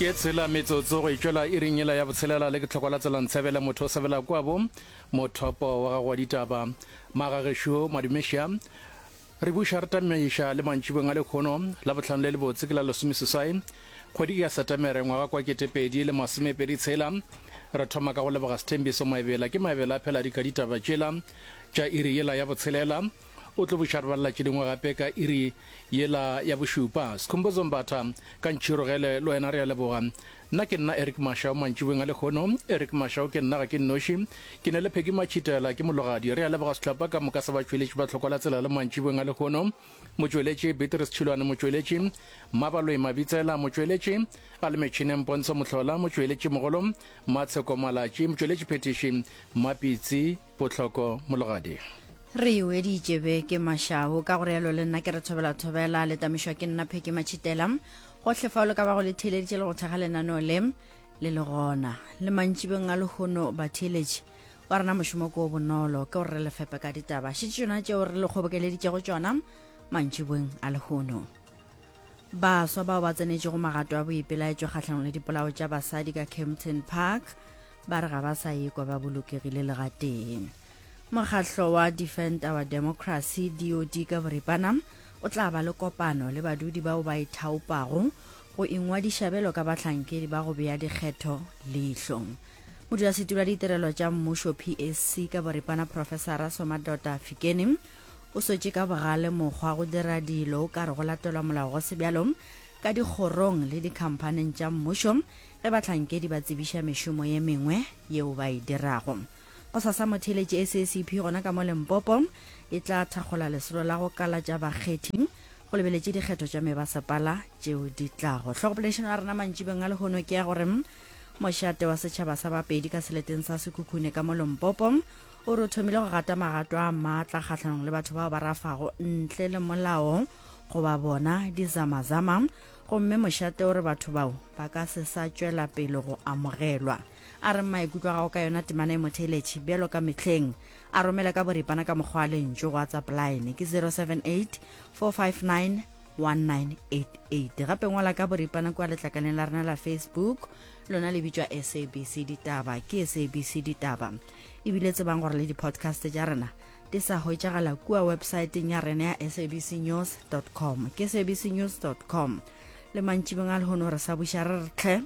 ke tshela metsotso go itšwela e ring ela ya botshelela le ke tlhoko la tselang tshebele motho o sebela kwabo mothopo wa gago wa ditaba magagešo madumeša re buša re tamaiša le mantšibong a lekgono la botlhano le lebotse ke la lesomeseswai kgwedi ya setemere ngwaga kwa ketepedi le masomepedi tshela re thoma ka go leboga sethembiso maebela ke maebela a phela di ka ditaba tšela tša iri yela ya botshelela O tlo buša rbalala tše dingwe gape ka iri yela ya bošupa. Skhumbuzo Mbatha, ka ntšhirogele le wena re a leboga. Nna ke nna Eric Mashau mantšiboweng a lekgono. Eric Mashau ke nna ga ke nnoši. Ke na le Peggy Matšhitela, ke mologadi. Re a leboga sehlopha ka moka sa batšweletši ba Tlhokola Tselalo mantšiboweng a lekgono. Motšweletši, Beatrice Tšhilwane Motšweletši, Mmabaloi Mabitsela Motšweletši, a le metšhineng Pontsho Mohlola Motšweletšimogolo, Matsheko Malatši Motšweletšiphethiši, Mmapitsi, Potlhoko mologadi. Re e weditše be ke mašahu, ka go realo le nna ke re thobela-thobela, le tamišwa ke nna Pheke Matšhitela. Gohle fao le ka bago le theeleditše le go thekga lenaneo le, le le gona. Le mantšibeng a lehono, batheeletši, wa rena mošomo ke o bonolo, ke gore re le fepe ka ditaba. Šetše tšona tšeo re le kgobokeleditšego tšona mantšibeng a lehono. Baswa bao ba tsenetšego magato a boipelaetšo kgahlanong le dipolao tša basadi ka Kempton Park ba re ga ba sa ekwa ba bolokegile le gatee. Mokgahlo wa Defend Our Democracy DOD ka boripana o tla ba le kopano le badudi bao ba ithaopago go ingwadiša belo ka bahlankedi ba go bea dikgetho leihlo. Modulasetulo wa ditirelo tša mmušo PSC ka boripana Profesara Somadota Fikeni O swetše ka bogale mokgwa go dira dilo o ka re go latelwa molao go sebjalong ka dikgorong le dikhamphaning tša mmušo ge bahlankedi ba tsebiša mešomo ye mengwe yeo ba e dirago. Go sasa motheeletši SACP gona ka mo Limpopo e tla thakgola lesolo la go kalatša bakgethi go lebeletše dikgetho tša mebasepala tšeo di tlago. Hlogopoledišano ya rena mantšibeng a lehono ke ya gore mošate wa setšhaba sa Bapedi ka seleteng sa Sekhukhune ka mo Limpopo o re o thomile go gata magato a maatla kgatlhanong le batho bao ba rafago ntle le molao goba bona dizamazama gomme mošate o re batho bao ba ka se sa tšwela pele go amogelwa a re maikutlo gago ka yona temana e motheletšhi bjalo ka mehleng a romele ka boripana ka mokgwa a lentšo go whatsapp line ke 078 459 1988 gape ngwala ka boripana kua letlakaleng la rena la facebook lona le bitšwa sabc ditaba ke sabc ditaba ebile tsebang gore le di-podcast tša rena di sa hwetšagala kua websaeteng ya rena ya sabc news com ke sabc news com le mantšibeng a lehono re sa buša re re tlhe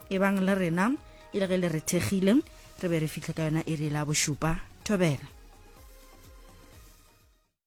e bang le rena e le ge le re thekgile re be re fihle ka yona e re la bošupa thobela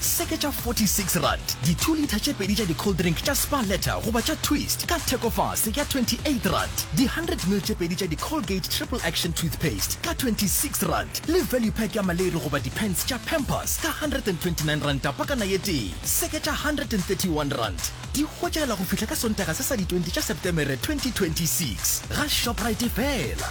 Seke tša 46 rand, di two litre tše pedi tša di cold drink tša Spar Letter goba tša Twist ka thekofase ya 28 rand, di 100 ml tše pedi tša di Colgate Triple Action Toothpaste ka 26 rand, le value pack ya maleri goba di pants tša Pampers ka 129 ranta pakana ye tee. Seke tša 131 rand, di hwetšagela go fihla ka Sontaga se sa di 20 tša Septemere 2026 ga Shoprite fela.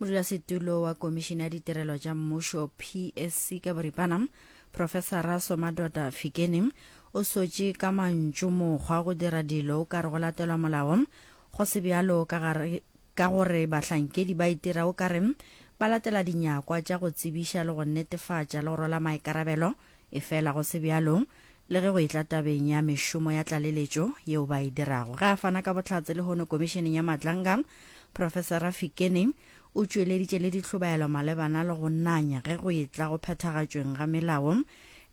modulasetulo wa komišene ya ditirelo tša mmušo psc ka boripana profesara somadota fikeni o sotše ka mantšu mokgwa go dira dilo o ka re go latelwa molao go se bjalo ka gare ka gore bahlankedi ba itira o ka re ba latela dinyakwa tša go tsebiša le go netefatša le go rwala maikarabelo Efela go se bjalo. Le ge go etla tabeng ya mešomo ya tlaleletšo yeo ba e dirago, ge a fana ka bohlatse lehono Komišeneng ya Matlanga, Profesara Fikeni o tšweleditše le dihlobaelo malebana le go nanya ge go etla go phethagatšweng ga melao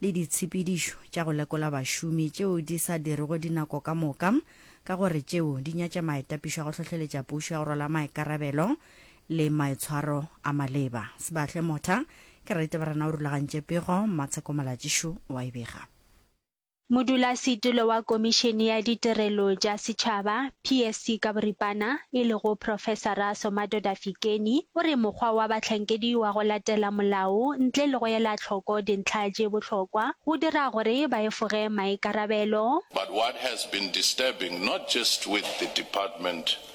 le ditshepedišo tša go lekola bašomi tšeo di sa dirego dinako ka moka ka gore tšeo di nyatša maetapišo a go hlohleletša pušo ya go rwala maikarabelo le maitshwaro a maleba. Sebahle Motha, Kereite Barena o rulagantše pego, Mmatsheko Malatšišu wa e bega. Modulasetulo wa Komišene ya Ditirelo tša Setšhaba, PSC ka boripana, e lego Profesara Somadoda Fikeni, o re mokgwa wa bahlankedi wa go latela molao ntle le go ela tlhoko dintlha tše bohlokwa go dira gore ba efoge maikarabelo. But what has been disturbing not just with the department,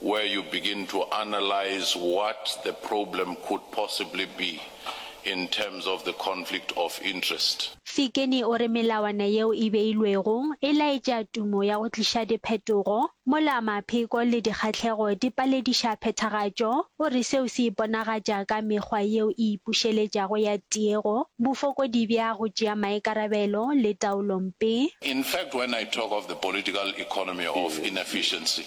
where you begin to analyse what the problem could possibly be in terms of the conflict of interest. Fikeni o re melawana yeo e beilwego e laetša tumo ya go tliša diphetogo, mola mapheko le dikgahlego di palediša phethagatšo. O re seo se iponagatša ka mekgwa yeo e ipušeletšago ya tiego, bofokodi bja go tšea maikarabelo le taolompe. In fact, when I talk of the political economy of inefficiency,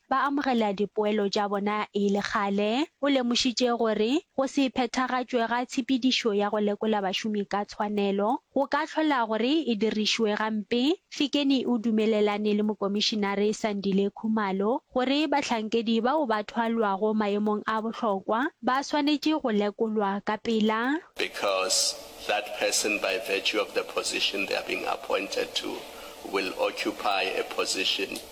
ba amogela dipoelo tša bona e le kgale. O lemošitše gore go se phethagatšwe ga tshepedišo ya go lekola bašomi ka tshwanelo go ka hlola gore e dirišwe gampe. Fikeni o dumelelane le Mokomišinare Sandile Khumalo gore bahlankedi bao ba thwalwago maemong a bohlokwa ba swanetše go lekolwa ka pela. because that person by virtue of the position they are being appointed to will occupy a position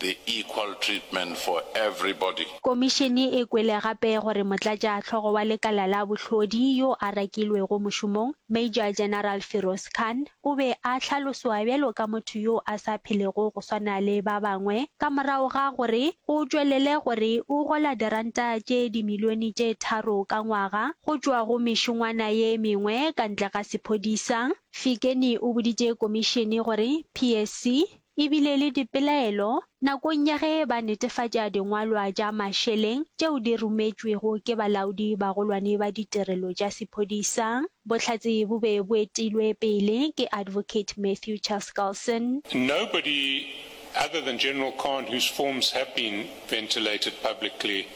The equal treatment for everybody. Komišene e kwele gape gore motlatšahlogo wa lekala la bohlodi yo a rakilwego mošomong, Major General Firoz Khan, o be a hlaloswa bjalo ka motho yo a sa phelego go swana le ba bangwe ka morago ga gore o tšwelele gore o gola diranta tše dimilione tše tharo ka ngwaga go tšwa go mešongwana ye mengwe ka ntle ga sephodisa. Fikeni o boditše komišene gore PSC e bile le dipelaelo nakong ya ge ba netefatša dingwalwa tša mašeleng tšeo di rometšwego ke balaodi bagolwane ba ditirelo tša sephodisa. Bohlatse bo be bo etilwe pele ke Advocate Matthew Chaskalson. Nobody other than General Khan whose forms have been ventilated publicly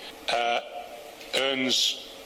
earns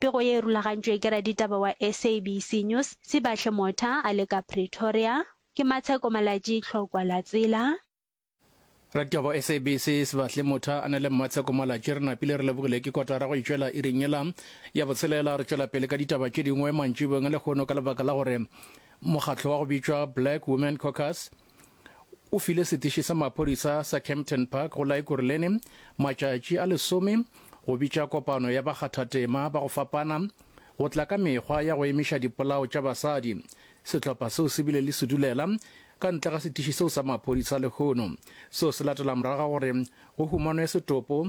Pego ye e rulagantšwe ke raditaba wa SABC News, Sibahle Motha a le ka Pretoria. Ke Matsheko Malatji, Tlhokwa la Tsela. Raditaba wa SABC, Sibahle Motha a na le Mmatsheko Malatji. Re napile re lebogile ke kotara go e tšwela iring yela ya botshelela. Re tšwela pele ka ditaba tše dingwe mantšibeng a lehono ka lebaka la gore mokgatlo wa go bitšwa Black Women Caucus, o file setiši sa maphodisa sa Kempton Park go la Ekurhuleni matšatši a lesome go bitša kopano ya bakgathatema ba go fapana go tla ka mekgwa ya go emiša dipolao tša basadi. Sehlopha seo se bile le sedulela ka ntle ga setiši seo sa maphodisa lehono. Seo se latela morago ga gore go humanwe setopo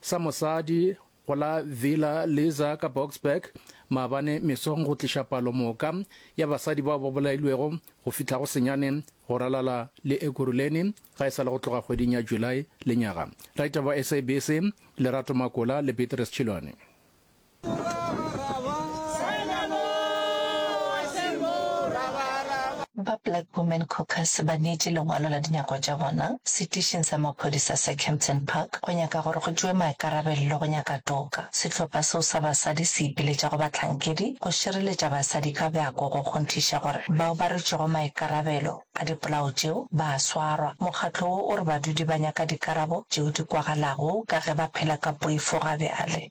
Sa mosadi go la Villa Liza ka Boksburg maabane mesong go tliša palo moka ya basadi bao ba bolailwego go fihla go senyane go ralala le Ekurhuleni ga e sa le go tloga kgweding ya July lenyaga. Raitaba wa SABC Lerato Makola le Beatrice Chilwane. Ba Black Women Caucus ba neetše lengwalo la dinyakwa tša bona setišing sa maphodisa sa Kempton Park go nyaka gore go tšewe maikarabello go nyaka toka. Sehlopha seo sa basadi se ipiletša go bahlankedi go šireletša basadi ka bjako go kgonthiša gore bao ba rwetšego maikarabelo a dipolao tšeo ba a swarwa. Mokgatlo wo o re badudi ba nyaka dikarabo tšeo di kwagalago ka ge ba phela ka poifo ga bjale.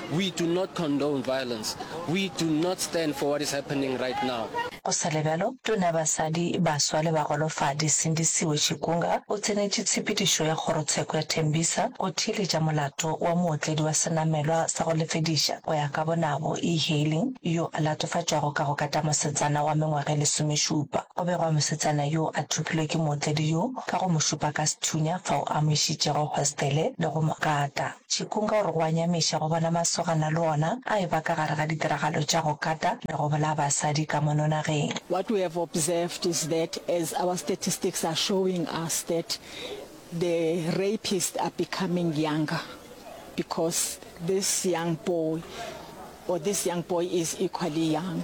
We do not condone violence. We do not stand for what is happening right now. Go sa le bjalo, Tona ya Basadi, Baswa le Bagolofadi, Sindisiwe Chikunga, o tsenetše tshepedišo ya kgorotsheko ya Tembisa go theeletša molato wa mootledi wa senamelwa sa go lefediša go ya ka bonabo, e-hailing, yo a latofatšwago ka go kata mosetsana wa mengwaga e lesomešupa. Go begwa mosetsana yo a thopilwe ke mootledi yo ka go mo šupa ka sethunya fao a mo išitšego hostele le go mo kata. Tšhikung ka gore go a nyamiša go bona masogana le ona a eba ka gare ga ditiragalo tša go kata le go bolaya basadi ka mono nageng. What we have observed is that as our statistics are showing us that the rapists are becoming younger because this young boy or this young boy is equally young